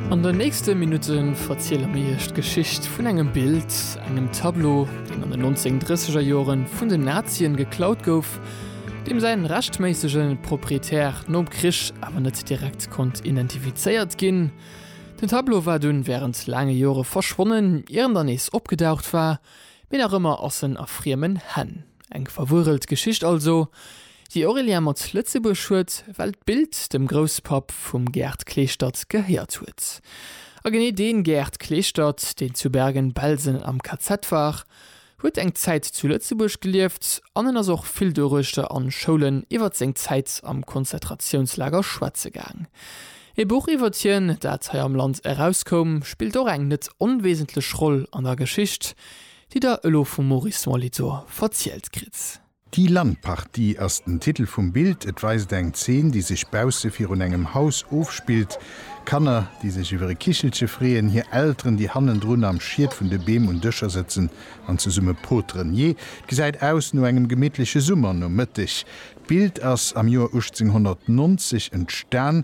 An den nächste Minutte verziele mir Iech d'Geschicht vun engem Bild, engem Tableau, deen an den 1930er Jore vun den Nazien geklaut gouf, deem säi rechtméissege Proprietär nom Krich awer net direkt konnt identifizéiert ginn. Den Tableau war dunn wärend laange Jore verschwonnen, ier en dann nees opgedaucht war, mee nach ëmmer ass en a friemen Hänn. Eng verwurelt Geschicht also, déi Aurélien mat Lëtzebuerg huet, well d'Bild dem Grousspapp vum Gerd Kleeschtert gehéiert huet. A genee dee Gerd Kleeschtert, deen zu Bergen-Belsen am KZ war, huet eng Zäit zu Lëtzebuerg gelieft an en ass och vill doruechter an Schoulen iwwert seng Zäit am Konzentratiounslager schwätze gaang. Ee Buch iwwert hien, dat hei am Land erauskoum, spillt och eng net onwesentlech Roll an der Geschicht, Déi der elo vum Maurice Molitor verzielt kritt. Die Landpartie ass den Titel vum Bild. Et weist eng Zeen, déi sech bausse virun engem Haus ofspillt. Kanner, déi sech iwwer e Kichelche freeën, hir Elteren, déi hannendrun am Schiet vun de Beem un Dëscher sëtzen an zesumme poteren. Jee, et gesäit aus no engem gemittleche Summernomëtteg. D'Bild ass am Joer 1890 entstan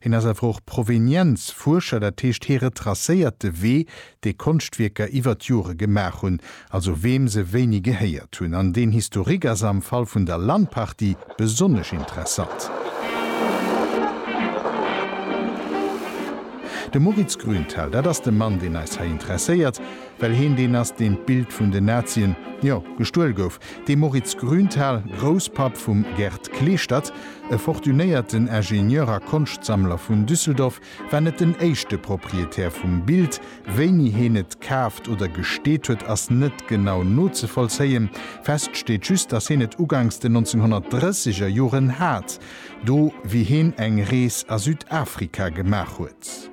Hien ass awer och Provenienzfuerscher, dat heescht hie retracéiert de Wee, dee Konschtwierker iwwer d'Jore gemaach hunn, also weem se wéini gehéiert hunn. An deen Historique ass am Fall vun der Lan-Partie besonnesch interessant. De Moritz Grünthal, dat ass de Mann, deen eis hei interesséiert, well hien deen ass, deen d'Bild vun den Nazien, jo, gestuel gouf, De Moritz Grünthal, Grousspapp vum Gerd Kleeschtert, e fortunéierten Ingenieur a Konschtsammler vun Düsseldorf, war net den éischte Proprietär vum Bild. Wéini heen et kaaft oder gesteet huet, ass net genau nozevollzéien. Fest steet just, datt heen et ugangs den 1930 er Joren hat, do wéi heen eng Rees a Südafrika gemaach huet.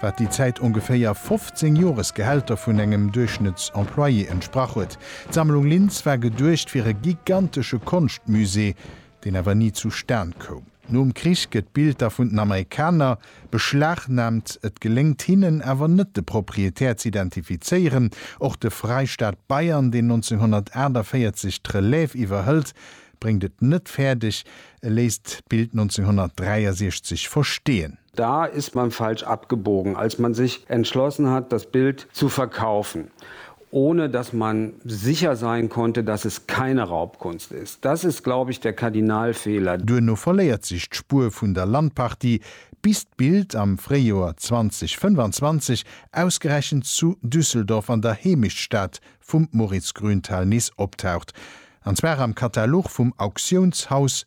wat déi Zäit ongeféier 15 Joresgehälter vun engem Duerchschnëttsemployé entsprach huet. D'Sammlung Linz war geduecht fir e gigantesche Konschtmusée, deen awer ni zu Stan koum. Nom Krich gëtt d'Bild da vun den Amerikaner beschlagnaamt, et geléngt hinnen awer net de Proprietär z'identifizéieren. Och de Freistaat Bayern, deen 1948 d'Relève iwwerhëlt, bréngt et net fäerdeg, e léisst d'Bild 1963 versteeën. Da ist man falsch abgebogen, als man sich entschlossen hat, das Bild zu verkaufen, ohne dass man sicher sein konnte, dass es keine Raubkunst ist. Das ist, glaube ich, der Kardinalfehler. Duerno verléiert sech d'Spuer vun der Landpartie, bis d'Bild am Fréijoer 2025 ausgerechent zu Düsseldorf an der Heemechtsstad vum Moritz Grünthal nees optaucht, an zwar am Katalog vum Auktiounshaus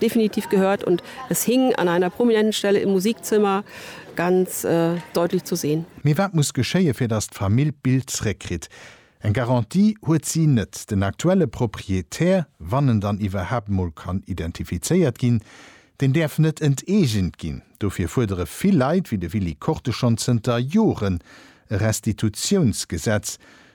Definitiv gehört und es hing an einer prominenten Stelle im Musikzimmer ganz deutlich zu sehen. Mee wat muss geschéien, fir datt d'Famill d'Bild zréckkritt? Eng Garantie huet si net. Den aktuelle Proprietär, wann en dann iwwerhaapt mol kann identifizéiert ginn, deen däerf net enteegent ginn. Dofir fuerdere vill Leit, wéi de Willy Korte schonn zënter Joren e Restitutiounsgesetz,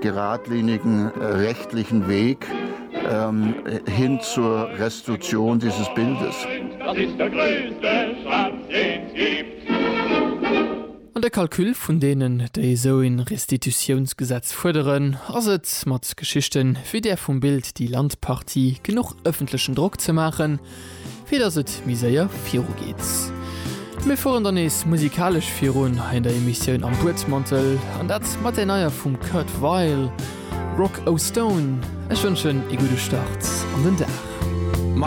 geradlinigen rechtlichen Weg hin zur Restitution dieses Bildes. An de Calcul vun deenen, déi esou een Restitutiounsgesetz fuerderen, ass et mat Geschichten wéi där vum Bild Die Landpartie genuch öffentlichen Drock ze maachen, fir dass et méi séier viru geet. Mir fueren dann nees musikalesch virun hei an der Emissioun Am Buedmantel, an dat mat der neier vum Kurt Weill, Rock O' Stone. Ech wënschen ee gudde Start an den Dag.